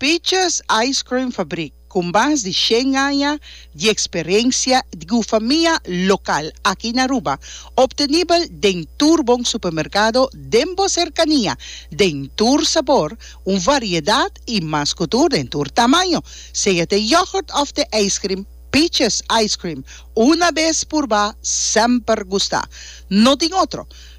Peaches Ice Cream Fabrik, ku mas di shen aña di eksperensia di gufamia lokal aki na Aruba, optenibel den tur bon supermerkado den bo serkania, den tur sabor, un variedat i mas ku tur den tur tamaño. Sea t'e yogurt òf t'e ijskrim, Peaches Ice Cream, una bes purbá, semper gustá. No tin otro.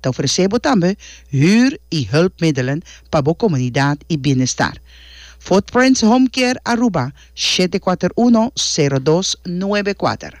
Ta ofresé bo tambe hür i hulpmiddelen pa bo komunidat i bienestar. Footprints Home Care Aruba, siete kuater uno, sero dos, nuebe kuater.